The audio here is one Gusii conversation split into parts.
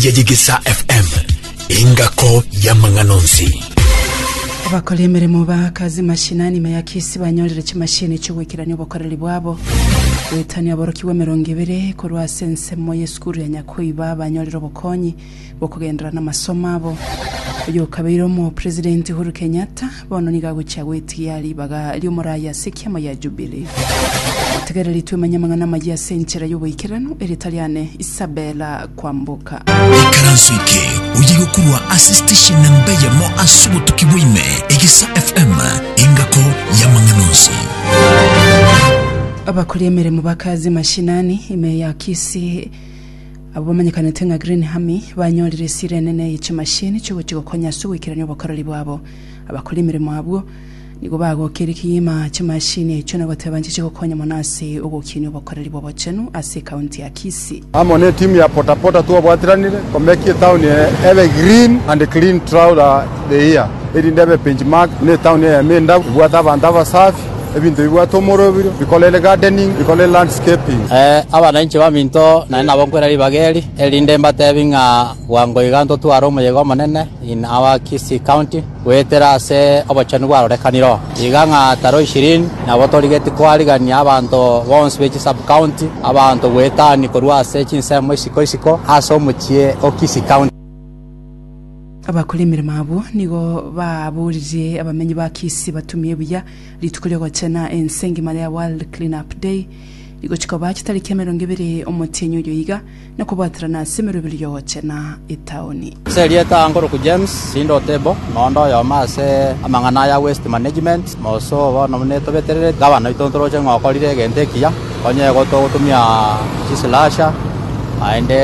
ya Yegesa FM, engako y'amang'ana onsi. Abakora emeremo ba kazi mashinani ime ya kisi banyorire chimashini chiogoikerania obokoreri bwabo goetania aborokigwa emerongo ebere korwa ase ensemo y'esukuru ya Nyakoiba banyorire obokonyi bokogenderera namasomo abo. Oyo okabeire omo president Uhuru Kenyatta Bono nigo agochia gwetigia ribaga ri'omoraai ase ekiama gia Jubili. Tegereri twemenye amang'ana amayia ase enchera y'oboikeranu, erieta riane Isabella Kwamboka. Ikaranso eke oye gokurwa ase station na mbeyemo ase obotuki bwaime Egesa FM engako y'amang'ana onsi. Abakori emeremo ba kazi mashinani ime ya Kisii abo bamanyekanete ng'a Green Army banyorire esira enene ye chimashini chiogochia gokonya ase ogoikerania obokoreri bwabo. Abakora emeremo abwo nigo bagokire kegima chimashini echio na goteba nchiche gokonya mono ase ogokinia obokoreri bw'obochenu ase ekaunti ya Kisii. Amo ne timu ya Potapota twabwatiranire komekia etauni eye ebe green and clean throughout the year erinde ebe benchmark na etauni eyemo endabu, ebwate abanto abasafi, ebinto bibwate omoroberio, bikorere gardening, bikorere landscaping. Ee, abana inche baminto, naende nabo nkwera ribaga eri, erinde mbatebi ng'a. Bwango iga ntotware omoyega omonene in our Kisii county goetera ase obochenu bwarorekanire oo, iga ng'a taro ishirini nabo torigetie koarigania abanto bonsi be chi sub-county abanto goetania korwa ase chinsemo isiko isiko ase omochie o Kisii county. Abakore emeremo abwo nigo baaboririe abamenyi ba Kisii batumie buya rituko ri'ogochena ense engima ria World Clean-up Day rigochia koba chitariki emerongo ebere omotienyi oyo iga. Na kobwaterana ase emeroberi y'ogocha na etaoni. Ase erieta ango rokwa James, rinde Otebo, noonde oyomo ase amang'ana aya Waste Management, Mosoo, bono buna etobeterereti, gavana oito ntoroche ng'a okorire egento ekiya, onye igo togotumia chislasher, naende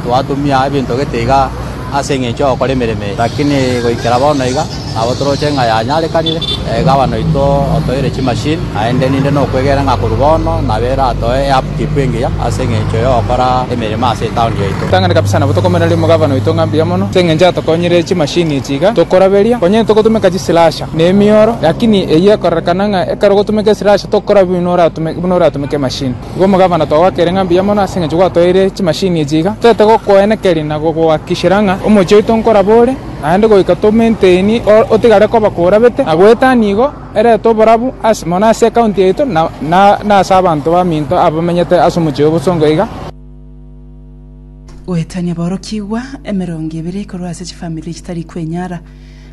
twatumia ebinto gete iga ase engencho y'ogokora emeremo eye, rakini goikera bono iga, Nabo toroche ng'a yanyarekanire. Gava noito otoeire chimashin aende ninde nokwegena ng'a korwa bono nabe eratoe eupkeep engiya ase engencho y'ogokora emeremo ase etaoni yaito. Tang'ani kabisa nabo tokomenera rimo gava noito ng'a mbuya mono ase engencho atokonyire echimashin echi iga tokoraberia. Onye ntogotumeka chislasher na emioro lakini eyio ekorerekana ng'a ekero ogotumeka eslasher tokora buna oratumeke emashin. Igo omogavana twagoakeire ng'a mbuya mono ase engencho gwatoeire chimashin echi iga. Toete gokoenekeria na gogoakikishera ng'a omochie oito nkoraba ore. Naende goika tomainteni otigare koba korabete, na goeta nigo erete oborabu mono ase ekaunti yaito na ase abanto baminto abamenyete ase omochie o bosongo iga. Goetania aborokigwa emerongo ebere korwa ase chifamiri chitari kwenyara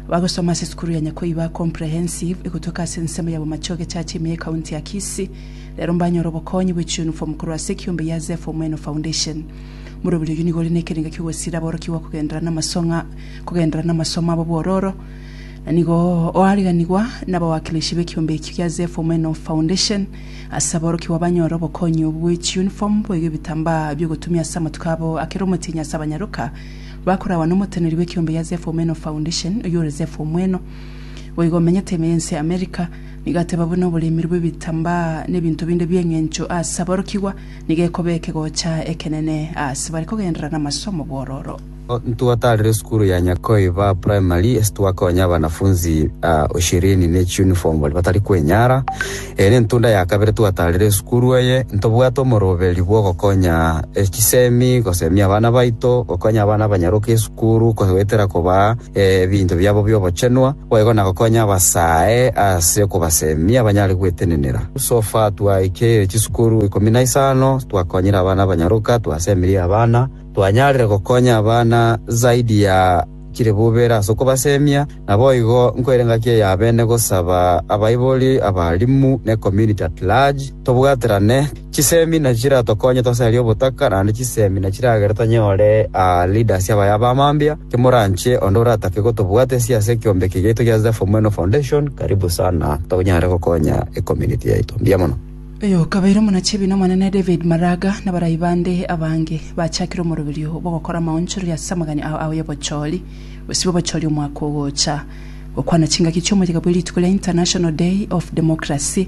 abagosoma ase esukuru ya Nyakoiba Comprehensive egotoka ase ensemo ya Bomachoge Church ime ekaunti ya Kisii rero mbanyore obokonyi bwe chiunifom korwa ase ekiombe ya Zepho Mweno Foundation. Morobiri oyio nigo ore nekerengo ki'ogosira aborokigwa kogenderera namasong'a kogenderera namasomo abo bwororo, na nigo oariganigwa nabawakilishi b'ekiombe ekio gia Zeph Omeno Foundation ase aborokigwa banyore obokonyi obwo bwe chiuniform boigo ebitambaa bi'ogotumia ase amatuko abo akere omotienyi ase abanyaroka bakoragwa nomoteneri bw'ekiombe gia Zeph Omeno Foundation oyio ore Zeph Omweno boigo omenyete ime y'ense ya America nigo ateba buna oboremiri bw'ebitambaa nebinto binde bi'eng'encho ase aborokigwa Nigo ekoba ekegocha ekenene ase bare kogenderera namasomo bw'ororo. Ntwatarire esukuru ya Nyakoiba Primary ase twakonya abanafunzi ishirini ne chiuniform baria batari kwenyara. Eye nentunda ya kabere twatarire esukuru eye. Ntobwate omoroberi bw'ogokonya chisemi, gosemia abana baito, gokonya abana abanyaroka esukuru, koetera kobaa ebinto biabo bi'obochenwa, boigo na gokonya abasae ase okobasemia banyare gwetenenera. So far twaikeirie chisukuru ikomi na isano, twakonyire abana abanyaroka, twasemirie abana, twanyarire gokonya abana zaidi ya chire bubera ase okobasemia. Naboigo nkoire engaki eyabene gosaba abaibori, abalimu, ne community at large tobwaterane. Chisemi na chiratokonye tosarie obotaka naende chisemi na chiragere tonyore leaders abaya abamambia. Kemoranche onde oratake gotobwata ase ase ekiombe eke giaito gia Zephyr Mweno Foundation, karibu sana tonyare gokonya ecommunity yaito. Mbuya mono. Oyokabeire omonachibi n'Omonene David Maraga na barai bande abange bachakire omoroberio bw'ogokora amaonchoreria ase amagani ao ao y'obochori gosibwa obochori omwaka ogocha. Gokwana chingaki chi'omoyega bwe rituko ria International Day of Democracy,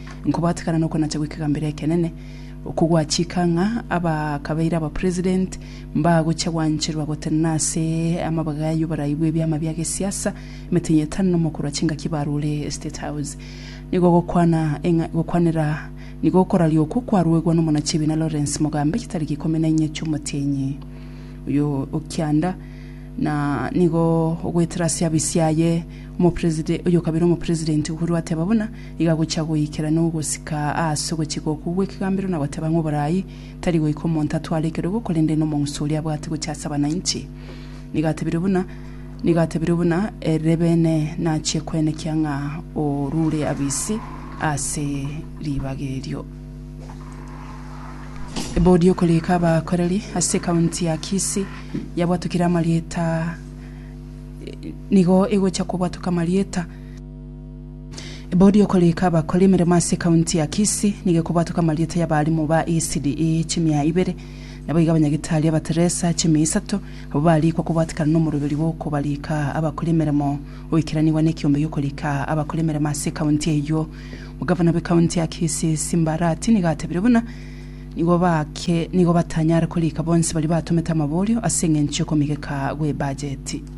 Nkobatekana nokonacha gwe kegambero ekenene, okwo gwachika ng'a abakabeire abapresident mbagochia gwancherwa gotenena ase amabaga y'oborai bw'ebiama bia gesiasa emetenya etano na omokorwa chingaki barure State House. Nigo gokwana eng'a gokwanera nigo okoraria okwo kwaruegwa nomonachi ebiina Lawrence Mogambe chitariki ikomi na inye chi'omotienyi oyo o kianda na nigo ogoetera ase abisi aye omopreside oyokabeire omopresident Uhuru ateba buna Iga gochia goikera nogosika aase ogochika okwo gw'ekegambero na goteba ng'a oboraai tari goika omonto atware ekerogo korende nomong'usi oria abwate gochia ase abananchi. Nigo atebirio buna Nigo atebirio buna erebene nachie koenekia ng'a orure abisi ase ribaga erio. Ebodi y'okorika abakoreri ase ekaunti ya Kisii yabwatokire amarieta Nigo egochia kobwatoka amarieta. Bodi okorika abakora emeremo ase kaunti ya Kisii nigo ekobwatoka amarieta y'abarimu ba ECDE chimia ibere, naboigo abanyagitari aba Teresa chimia isato, abwo barikwa kobwatikana nomoroberio bw'okobarika abakora emeremo oikiranigwa nekiombe gi'okorika abakora emeremo ase kaunti eyio. Omogavana bwe kaunti ya Kisii Simba Arati nigo atebire buna nigo bake nigo batanyare korika bonsi baria batomete amaborio ase eng'encho y'okomigeka gw'ebajeti.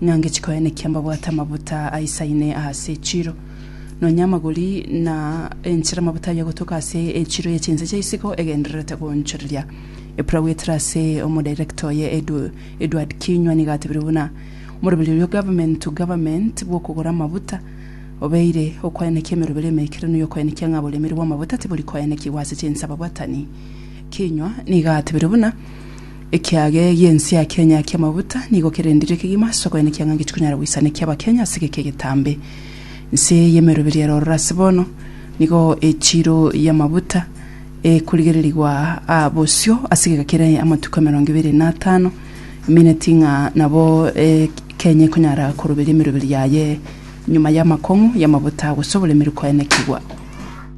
Ng'a ngechia koenekia mbabwate amabuta aisaine aase echiro, nonya amagori, na enchera amabuta ayio agotoka ase echiro ye chinse chia isiko egendererete goonchoreria. Epura goetera ase omodirector oye Edward Kinyua nigo atebire buna omoroberi oria o government to government bw'okogora amabuta obeire okoenekia emeroberi emeikeranu y'okoenekia ng'a oboremiri bw'amabuta tibori koenekigwa ase chinse ababwatani. Kinyua nigo atebire buna. Ekiage gi'ensia Kenya ki'amabuta nigo kerendirie kegima ase okoenekia ng'a gechikonyara goisanekia Abakenya ase egeka egetambe. Nse y'emeroberio ero ororo ase bono nigo echiro y'amabuta ekorigererigwa aa bosio ase egeka kere amatuko emerongo ebere na atano, emineti ng'a nabo Kenya ekonyara koroberia emeroberio yaye nyuma y'amakong'u y'amabuta gose oboremiri koenekigwa.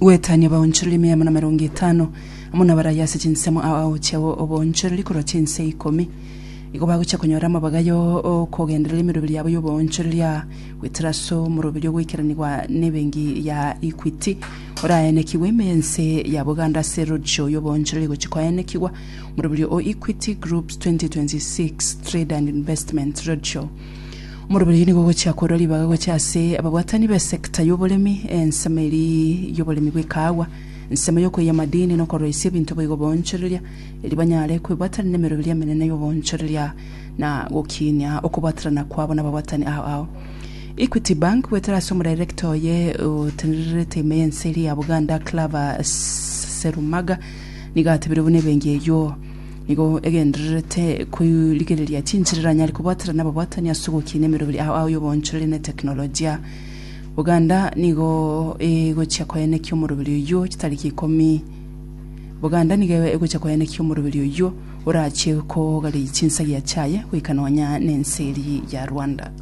Gwetania obaonchorori mia amo namerongo etano, amo nabarayia ase chinsemo ao chiabo oboonchorori korwa chinse ikomi. Igo bagochia konyora amabaga yo okogenderera emeroberi yabo y'oboonchorori aa goetera ase omoroberi ogoikeranigwa nebengi ya Equity, oraenekigwe ime y'ense ya Buganda ase roadsho y'oboonchorori egochia koenekigwa, omoroberi o Equity Groups 2026 Trade and Investment Roadshow. Omorwori oyo nigo ogochia korwa ribaga gocha ase ababwatani b'esekta y'oboremi, ensemo eria y'oboremi bw'ekaagwa, ensemo y'okoiya amadini, na okorwaisia ebinto boigo boonchoreria, erio banyare kwebwatanera n'emeroberio emenene y'oboonchoreria na gokiinia okobwatanana kwabo n'ababwatani ao ao. Equity Bank goetera ase omodairekta oye otenererete ime y'ense eria ya Buganda, Claver Serumaga, nigo atebirie buna ebenki eyio Nigo egendererete koirigereria chinchera eranyare kobwatera nababwatani ase ogokiina emeroberi ao ao y'oboonchoreri na etekinolojia. Buganda nigo egochia koenekia omoroberi oyio chitariki ikomi. Buganda nigo egochia koenekia omoroberi oyio orachie kogareyia chinsagia chiaye goika nonya nense eria ya Rwanda.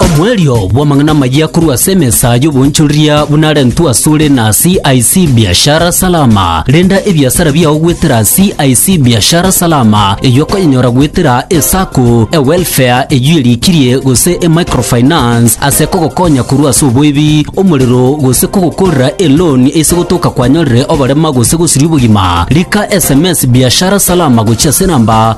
Omoerio bw'amang'ana amayia korwa ase emesa y'oboonchoreria buna arentwe asore na CIC Biashara Salama. Renda ebiasara biao goetera CIC Biashara Salama, eyio okonyenyora goetera eSacco, eWelfare eyio erikirie gose eMicrofinance ase kogokonya korwa ase oboibi, omorero gose kogokorera eloan ase gotoka kwanyorire oborema gose gosiria obogima. Rika sms Biashara Salama gochia ase enamba